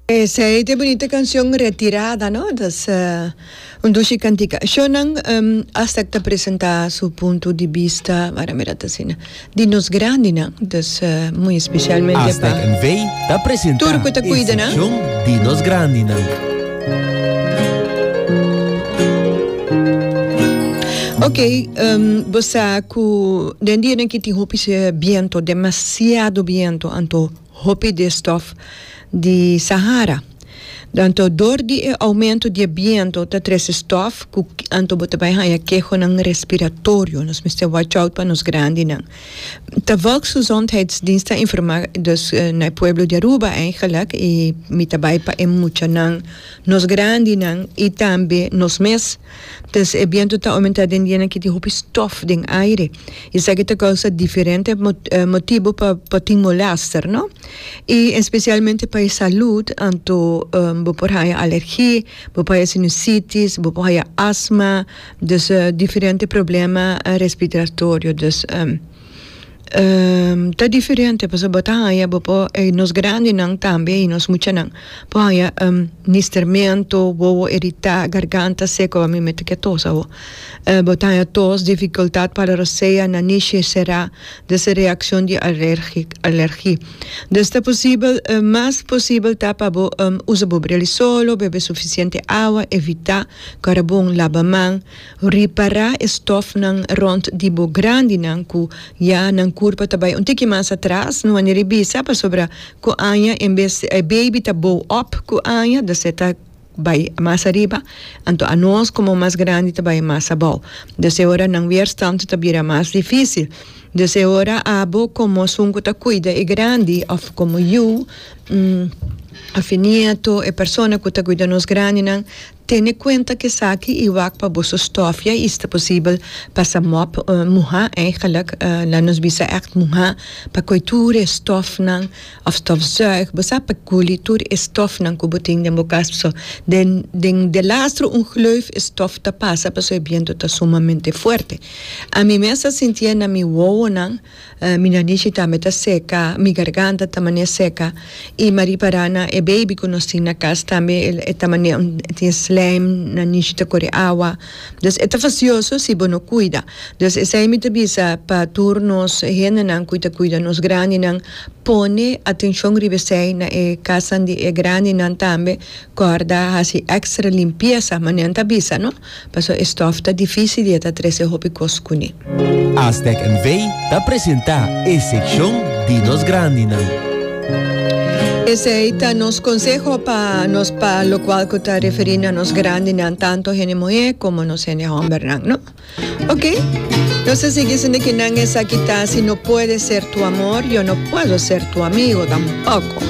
Esei ta e bunito canción Retirada no tas un dushi cantica ashonan hasta ki ta presenta su punto di bista wak ta mira ta asina di nos grandi nan tas muy especialmente pa tur cu ta cuida nan. Ok bo sa cu den dianan aki tin hopi biento demasiado biento anto. Hopi di e stof di Sahara. Anto dor di e aumento di e biento ta trese stof ku anto bo ta bai haña kehonan respiratorio. Nos mester watch out pa nos grandinan. Ta Volksgezondheidsdienst a informa dus na e pueblo di Aruba eigenlik i mi ta bai pa e muchanan, nos grandinan i tambe nos mes. Tes e bientu ta omentá den dianan ki tin hopi stof den aire. Esaki ta kousa diferente motibu pa por tin molèster, no? I espesialmente pa e salùt, anto bo por haña alergi, bo por haña sinusitis, bo por haña asma, dus diferente problema respiratorio. Dus. ta diferente pasobra bo ta haya bo por nos grandenan tambe y nos muchanan por haya mistermento wowo irita garganta seco a mi me ta ke tos awo bo ta haya tos dificultad para rosea nanishi sera des a reaccion di alergi alergi des ta posibel mas posibel ta pa bo usa bo breli solo bebe suficiente awa evita carabon laba man. Ripará e stòfnan rònt di bo grandinan ku ya nan kurpa ta bai un tiki mas atras. No a ni ribisa pasobra ku aña en bes e beibi ta bou òp ku aña dus e ta bai mas ariba, anto anos komo mas grandi ta bai mas abou. Dus e ora nan weerstand ta bira mas difísil. Dus e ora abo komo esun ku ta kuida e grandi òf komo yu òf e nieto, e persona ku ta kuida nos grandinan, Tene cuenta cu esaki y wak pa boso stofia y sta posibel pasa mop muha, eigenlijk nan nos bisa echt muha, pa coe tur e stofnan of stofzuig, bo sa pa culi tur e stofnan cu bo tin den bo cas paso den den de lastro un gleuf e stof ta pasa paso e biento ta sumamente fuerte. A mi mes a sintia na mi wowonan Mi nanichi tambe ta seka, mi garganta ta mane seka, i Marie para na e baby ku nos tin na kas tambe el e ta mane un e tin slijm, nanichi ta kore awa, dus e ta fasioso si bo no kuida, dus esei mi ta bisa pa tur nos hendenan ku ta kuida nos grandinan pone atenshon riba esei, na e kasnan di e grandinan tambe kòrda hasi ekstra limpiesa, manera nan ta bisa no. Paso e stof ta difícil y e ta trece hopi cos cuné. Aztec NV ta presenta e seccion di nos grandinan. Esey ta nos conseho pa nos pa locual cu ta referi na nos grandinan, tanto hende muhé como nos hende hombernan, no? Ok, nos ta sigui sindiqui nan esaki ta Si no puede ser tu amor, yo no puedo ser tu amigo tampoco.